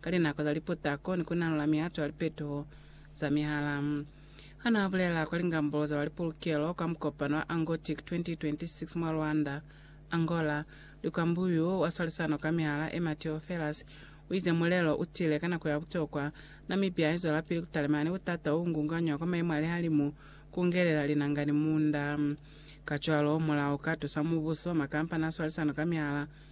ka linako za liputako ni ku nalola mihato ya lipetuho za mihala. Ha n'a bulela kwa lingambolo za ba lipolokelo kwa mukopano wa Angotic 2026 mwa Luanda, Angola, Lukwambu y'u wa swalisano kwa mihala e Mateo Ferraz u ize mulelo u tile ka nako ya butokwa. Namibia i zwelapili ku talimana ni butata o ngunganywa kwa mayemo a lihalimu, ku ngelela linanga ni munda. Kacwalo, mulao u ka tusa mubuso, makampani a swalisano kwa mihala,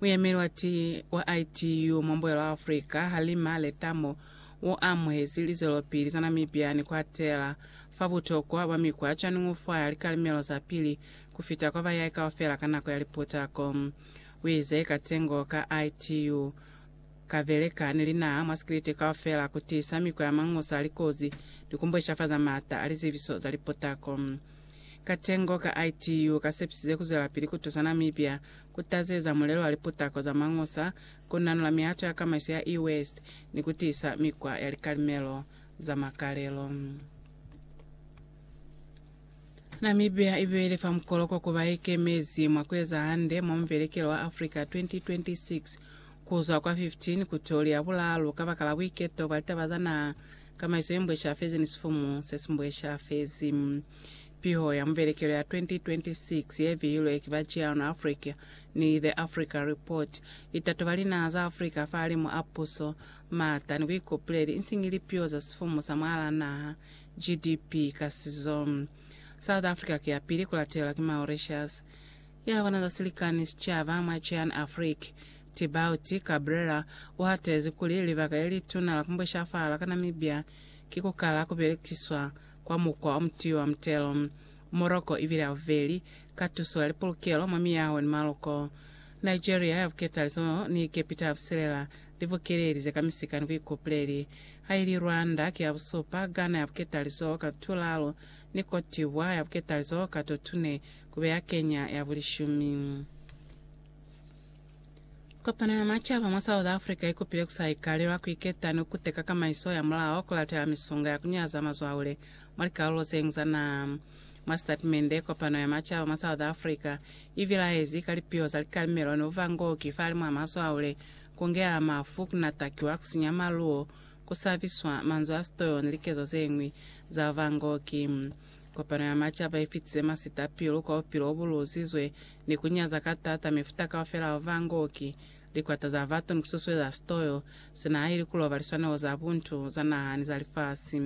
Muyemeli wa ti wa ITU mwa Mbuyelo wa Afrika, Halima Letamo, u amuhezi lizwelopili za Namibia ni ku atela fa butokwa bwa mikwa cwañi ku fa likalimelo za pili ku fita kwa bayai kaufela ka nako ya liputako. U ize katengo ka ITU ka beleka ni linaha mwa sikiliti kaufela ku tiisa mikwa ya mangusa likozi ni ku mbweshafaza m'ata a lizebiso za liputako. Katengo ka ITU ka sepisize ku zwelapili ku tusa Namibia kutazeza mulelo wa liputako za mañusa, kunanula mihato ya kamaiso ya e-waste, ni kutiisa mikwa ya likalimelo za makalelo. Namibia ibeile fa mukoloko ku baikemezi mwa kueza hande mwa Mubelekelo wa Africa 2026 kuzwa kwa 15 ku toli ya bulaalu kabakala buiketo bwa litaba za naha, kamaiso yembweshafezi ni sifumu sesimbweshafezi. Piho ya mubelekelo ya 2026 ye bihilwe ki ba Ciano Africa ni The Africa Report i tatoba linaha za Africa fahalimu a puso, maata ni buikopuleli insiñi lipiho za sifumu sa mwahalaa naha, GDP, ka sizo. South Africa ki ya pili ku latelwa ki Mauritius. Ya bona za silikani sicaba mwa Cian Afric, Tibaut Cabrera, u hatezi kuli libaka le lituna la ku mbweshafahala ka Namibia ki ku kala ku belekiswa kwa mukwa o mutiwa mutelo, Morocco i bile haubeli ka tuso ya lipolokelo mwa miyaho ni maloko. Nigeria ya Buketalizo ni Egepita ya Busilela li bukelelize ka misika ni buikupuleli, ha ili Rwanda ki ya busupa, Ghana ya Buketalizo ka tulalo, ni Cote d'Ivoire ya Buketalizo ka to tune, kube ya Kenya ya bulishumi. Kopano ya Macaba mwa South Africa i kupile ku sa ikalelwa ku iketa ni ku teka kamaiso ya mulao ku latela misunga ya ku nyaza mazwaule mwa likalulo ze ñwi za naha. Mwa sitatimende, Kopano ya Macaba mwa South Africa i bilaezi ka lipiho za likalimelo ni buvangoki fa limw'a mazwaule, ku ngelela mafu, ku natakiwa, ku sinya maluwo, ku sabiswa, manzwi a sitoyo ni likezo ze ñwi za buvangoki. Kopano ya Macaba i fitize masita pilu kwa bupilo bo bu luzizwe ni ku nyaza ka taata mifuta kaufela ya vangoki, likwata za batu ni ku susueza sitoyo se na haili ku loba liswanelo za buntu za naha ni za lifasi.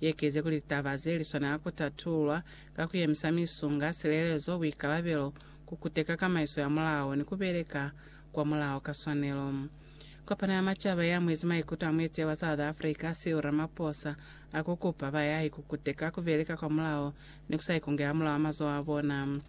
Ye kezi kuli litaba ze li swanela ku tatulwa ka ku yemisa misunga, silelezo, buikalabelo, ku kuteka kamaiso ya mulao, ni ku beleka kwa mulao ka swanelo. Kopano ya Macaba ye amuezi maikuto a mueteyi wa South Africa, Cyril Ramaphosa, a ku kupa bayahi ku kuteka ku beleka kwa mulao ni ku sa ikungela mulao a mazoho a bona.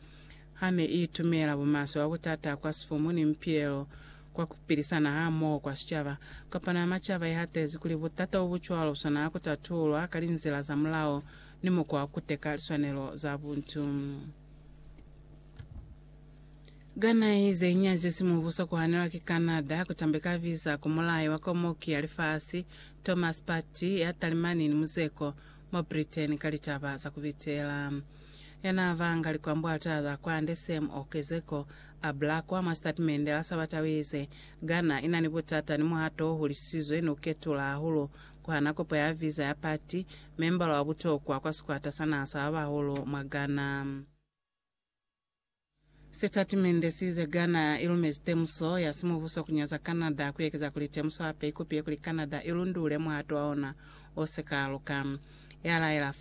ha ne i tumela bumaswe bwa butata kwa sifumu ni mipilelo kwa ku pilisana hamoho kwa sicaba. Kopano ya Macaba i hatezi kuli butata bo bu cwalo bu swanela ku tatululwa ka linzila za mulao ni mukwa wa ku teka liswanelo za buntu. Ka nahe ze ñwi ze si mubuso ku hanelwa ki Canada ku tambeka visa ku mulai wa Komoki ya Lifasi, Thomas Patti, ya Talimani ni Muzeko mwa Britain ka litaba za ku bitela. ya n'a vanga likwambwata za kwande Sam Okezeko, a bula kwa mwa sitatimende la Sabata u ize, Ghana i na ni butata ni muhato o hulisizwe ni u ketula hahulu ku hana kopo ya visa ya Pati, membala wa butokwa kwa sikwata sa naha sa ba bahulu mwa Ghana. Sitatimende si ize, Ghana i lumezi temuso ya simubuso ku nyaza Canada ku ekeza kuli temuso hape i kupiye kuli Canada i lundule muhato wa ona o si ka luka, ya laela fa.